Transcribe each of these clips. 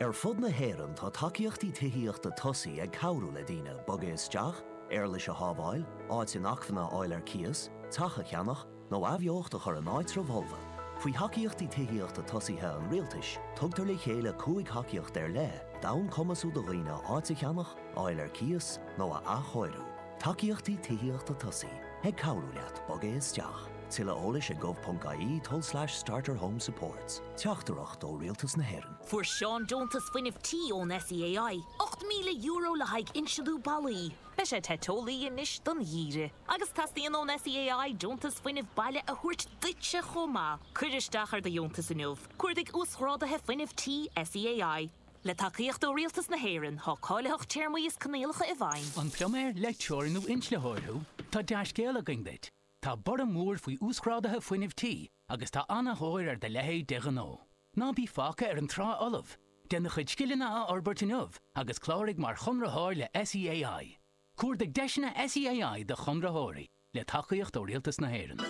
Ar fud na hÉireann tá tacaíochtaí tithíochta tosaigh ag cabhrú le daoine bogadh isteach, éarlais a shábháil, áit inacmhainne a fháil ar cíos, teach a cheannach, nó athbheocht a chur in áitreabh folamh. Faoi Thacaíochtaí Tithíochta Tosaigh an Rialtais, tugtar le chéile cúig thacaíocht ar leith d'fhonn cumasú do dhaoine áit a cheannach, a fháil ar cíos, nó a athchóiriú. Tacaíochtaí Tithíochta Tosaigh. Ag cabhrú leat bogadh isteach. Tuilleadh eolais ag gov.ie tulslais starterhomesupports. Teachtaireacht ó Rialtas na hÉireann. Fuair Seán deontas fuinnimh tí ón SEAI, €8,000 le haghaidh insealú ballaí. Beidh sé te teolaí anois don gheimhreadh. Agus teastaíonn ón SEAI deontas fuinnimh baile a thabhairt duitse chomh maith. Cuir isteach ar do dheontas inniu. Cuardaigh Uasghráduithe Fuinnimh Tí SEAI. Le tacaíocht ó Rialtas na hÉireann, tá cáilitheacht téarmaí is coinníollacha i bhfeidhm. An pluiméir, leictreoir nó inslitheoir thú? Tá dea-scéal againn duit! Tá borradh mór faoi uasghráduithe fuinnimh tí agus tá an-thóir ar do leithéid de ghnó. Ná bí fágtha ar an trá fholamh! Déan do chuid scileanna a fhorbairt inniu agus cláraigh mar chonraitheoir le SEAI. Cuardaigh deiseanna SEAI do chonraitheoirí. le tacaíocht ó Rialtas na hÉireann.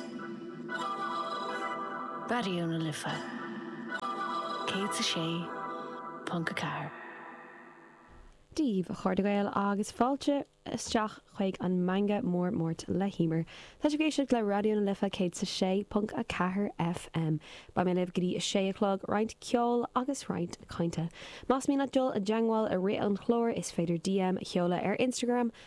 Raidió na Life 106.4. Dia daoibh, a chairde Gael agus fáilte isteach chuig an Meangadh Mór Máirt le hEimear. Tá sibh ag éisteacht le Raidió na Life 106.4 FM. Beidh mé libh go dtí a sé a chlog, roinnt ceoil agus roinnt cainte. Más mian leat dul i dteagmháil i rith an chláir is féidir DM a sheoladh ar Instagram,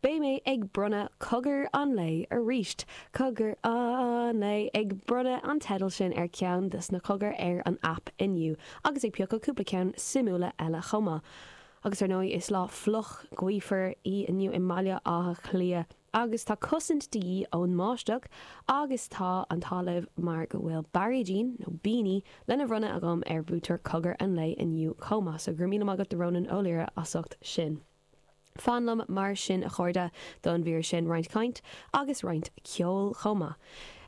Beidh mé ag bronnadh Cogar an Lae aríst. Cogar an Lae, ag bronnadh an teidil sin ar cheann de na cogair ar an aip inniu agus ag piocadh cúpla ceann suimiúla eile chomh maith. Agus ar ndóigh, is lá fliuch, gaofar í inniu i mBaile Átha Cliath agus tá cosaint de dhíth ón mbáisteach agus tá an t-ádh libh mar go bhfuil bairéidín, nó beanie, lena bhronnadh agam ar bhuaiteoir Cogar an Lae inniu chomh maith. So, go raibh míle maith agat do Rónán Ó Laoire as ucht sin. Fan liom mar sin a chairde don mhír sin, roinnt cainte agus roinnt ceoil chomh maith.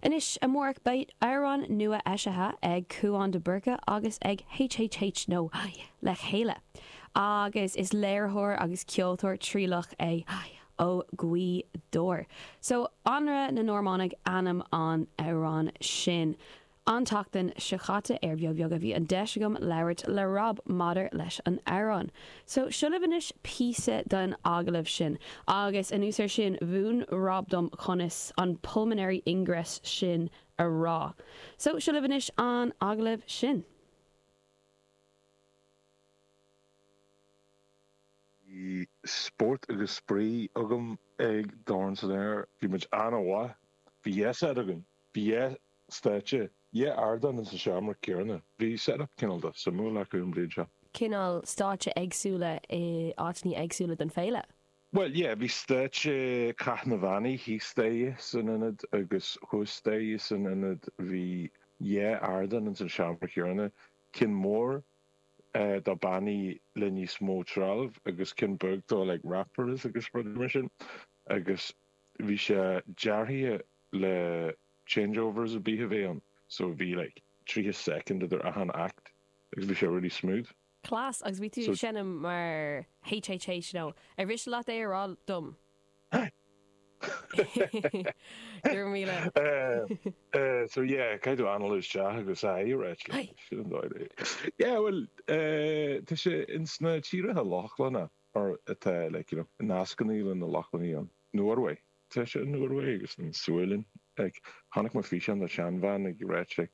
Anois amárach beidh amhrán nua eisithe ag Cuán de Búrca agus ag HHH Nó le chéile agus is léiritheoir agus ceoltóir trialach é ó Ghaoth Dobhair. So, Anraith na Normánaigh ainm an amhráin sin. An tseachtain seo chaite ar Bheo Bheag a bhí an deis agam labhairt le Rob maidir leis an amhrán. So, seo libh anois píosa den agallamh sin agus anuas ar sin mhúin Rob dom conas an pulmonary ingress sin a rá. So, seo libh anois an agallamh sin. Bhí spórt agus spraoi agam ag Dorn san Aer. Bhí muid an-mhaith. Bhí deis againn. Bhí dheis. stáitse, yeah ardán in sa seomra céarna. Bhí setup cineál suimiúil acu an bhliain seo. cineál stáitse eagsúla i áiteannaí eagsúla den fhéile. Bhuel, yeah, bhí stáitse Cath na mBannaí thíos staighre san ionad agus thuas staighre san ionad. Bhí dhá ardán in san seomra céarna, ceann mór do bannaí le níos mó trealaimh agus ceann beag do like rappers agus rudaí mar sin agus bhí sé deartha le, Changeover ar bith a bheith ann so a bhí like tríocha soicind idir achan act agus bhí sé really smooth. Class, agus bhí tú ag seinm mar Haigh you know, ar mhiste leat é a rá dom? Hahahaha Go raibh míle. Eh so yeah caithfidh tú anall isteach agus aye a reit like Aye. sin an dóigh le Yeah bhuel eh tá sé ins na tíortha Lochlanna or atá like you know nascannaí leis na Lochlannaigh ann, Norway. Tá sé i Norway agus i an Sualainn. Agus chonaic mé físeán de sheanbhean ag rá sé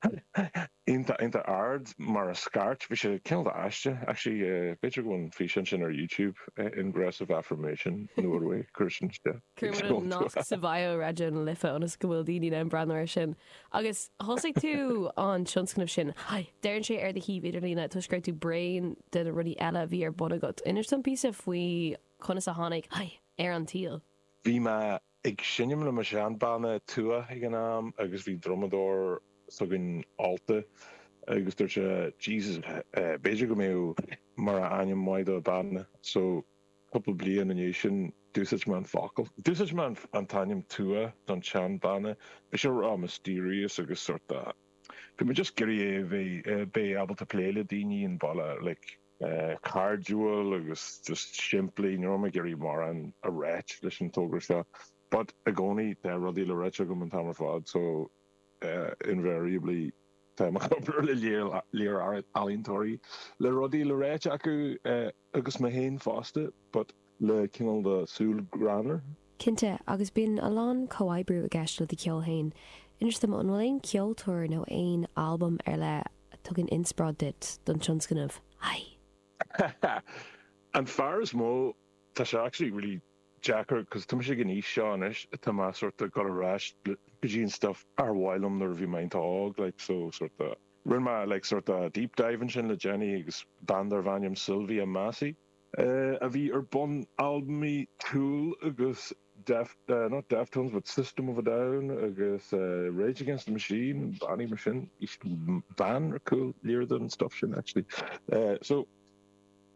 iontach iontach ard mar scairt. Bhí sé cineál de aisteach. Actually b'fhéidir go bhfuil an físeán sin ar YouTube, Ingressive Affirmation, Norway, cuir sin isteach. Cuirfidh muid an nasc sa bhio Raidió na Life ionas go bhfuil daoine in ann breathnú air sin. Agus thosaigh tú an tionscnamh sin. Deireann sé ar do shuíomh idirlíne toisc go raibh tú bréan de na rudaí eile a bhí ar bun agat. Inis dom píosa faoi conas a tháinig Haigh ar an tsaol. Bhí mé ag seinm le mo shean-bhanna Tuath ag an am agus bhí drumadóir s'againn ólta agus dúirt sé Jesus b'fhéidir go mbeadh mar ainm maith do banna so cúpla bliain i ndiaidh sin d'úsáid mé an focal. D'úsáid mé an t-ainm Tuath don tsean banna, bhí sé ró-mysterious agus sort of bhí mé just ag iarraidh é a bheith, bheith ábalta plé le daoine ar bhealach. cairdiúil agus just simplí. Ní raibh mé ag iarraidh mórán a ráit leis an togra seo but i gcónaí tá rudaí le ráit agam an t-am ar fad so invariably táim ag obair le léar ealaíontóirí le rudaí le ráit acu agus mé féin fosta but le cineál de súil ghreannmhar. Cinnte, agus bíonn a lán comhoibriú i gceist le do cheol féin. Inis dom, an bhfuil aon cheoltóir nó aon albam ar leith a tugann inspioráid duit don tionscnamh? Haigh! An fear is mó, tá sé actually really deacair cause tá mise ag an aois seo anois atá mé sórt of gabháil ar ais go dtí an stuff ar mhaith liom nuair a bhí mé iontach óg like so sórt of rinne mé like sórt of deep dive ansin le déanaí agus bean darb ainm Sylvia Massy a bhí ar bun albaimí Tool agus not Deftones but System of a Down agus Rage Against the Machine, bannaí mar sin, bhean ar cúl léar den stuff sin actually. So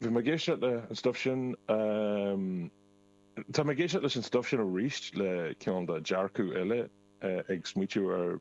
bhí mé ag éisteacht le an stuff sin, tá mé ag éisteacht leis an stuff sin arís le cineál de dearcadh eile ag smaoitiú ar